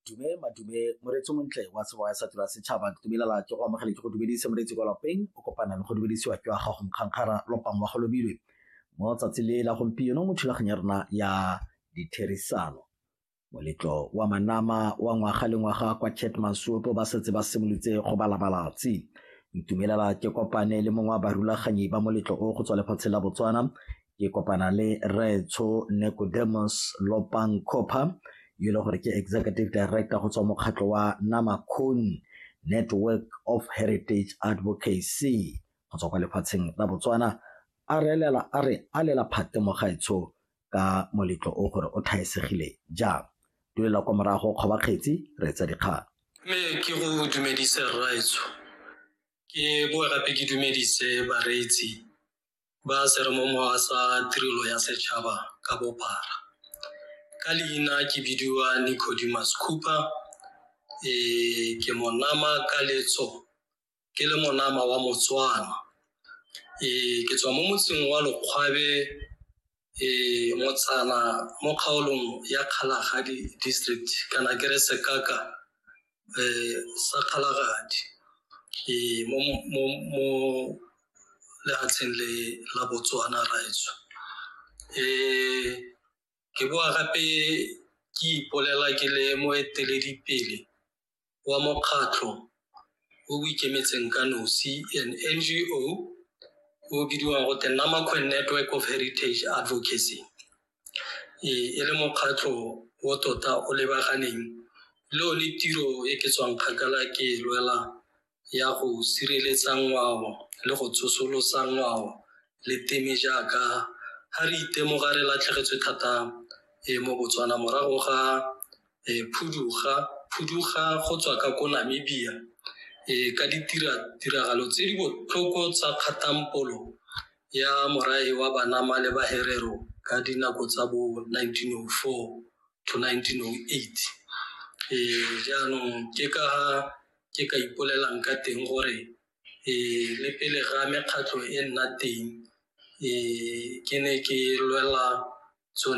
dume madume moreetsi montle wa sebo ya satura setšhaba dumelala ke go amogele ke go dumedise moreetsi kwa lapeng o kopana le go dumedisiwa ke wa gago nkgankgara lopang wa go lobilwe mo tsatsi le la gompieno mo thulaganyo ya rona ya ditherisano moletlo wa manama wa ngwaga le ngwaga kwa chet masuopo ba setse ba simolotse go balabalatsi ntumelela ke kopane le mongwe wa barulaganyi ba moletlo o go tswa lefatshe la botswana ke kopana le retsho necodemus lopang copper yo e le gore ke executive director go tswa mokgatlho wa namakon network of heritage advocacy go tswa kwa lefatsheng la botswana a re elela a re a lela phate mo gaetsho ka moletlo o gore o thaesegile jang dulela kwa morago kgoba kgetsi re etsa dikgang mme ke go dumedise rraetsho ke boa gape ke dumedise bareetsi ba seremomowa sa tirelo ya setšhaba ka bophara ka leina ke bidiwa nicodimus cooper e ke monama ka letso ke le monama wa motswana e ke tswa mo motseng wa lokgwabe e motsana mo kgaolong ya kgalagadi district kana ke re sekaka um sa kgalagadi e mo lefatsheng le la botswana raetso um ke boa gape ke ipolela ke le moeteledipele wa mokgatlho o o ikemetseng ka nosi, an NGO, o o bidiwang gote Namakwe Network of Heritage Advocacy. E e le mokgatlho o tota o lebaganeng le one tiro e ke tswang kgakala ke e lwela ya go sireletsa ngwao le go tsosolosa ngwao le teme jaaka ha re itemoga re latlhegetswe thata e mo Botswana morago ga e phuduga phuduga go tswa ka ko Namibia e ka ditira tiragalo tse di botlhoko tsa kgatampolo ya morae wa Banama le Baherero ka dinako tsa bo 1904 to 1908 e jaanong ke ka ke ka ipolelang ka teng gore um le pele ga mekgatlho e nna teng um ke ne ke lwela tsone.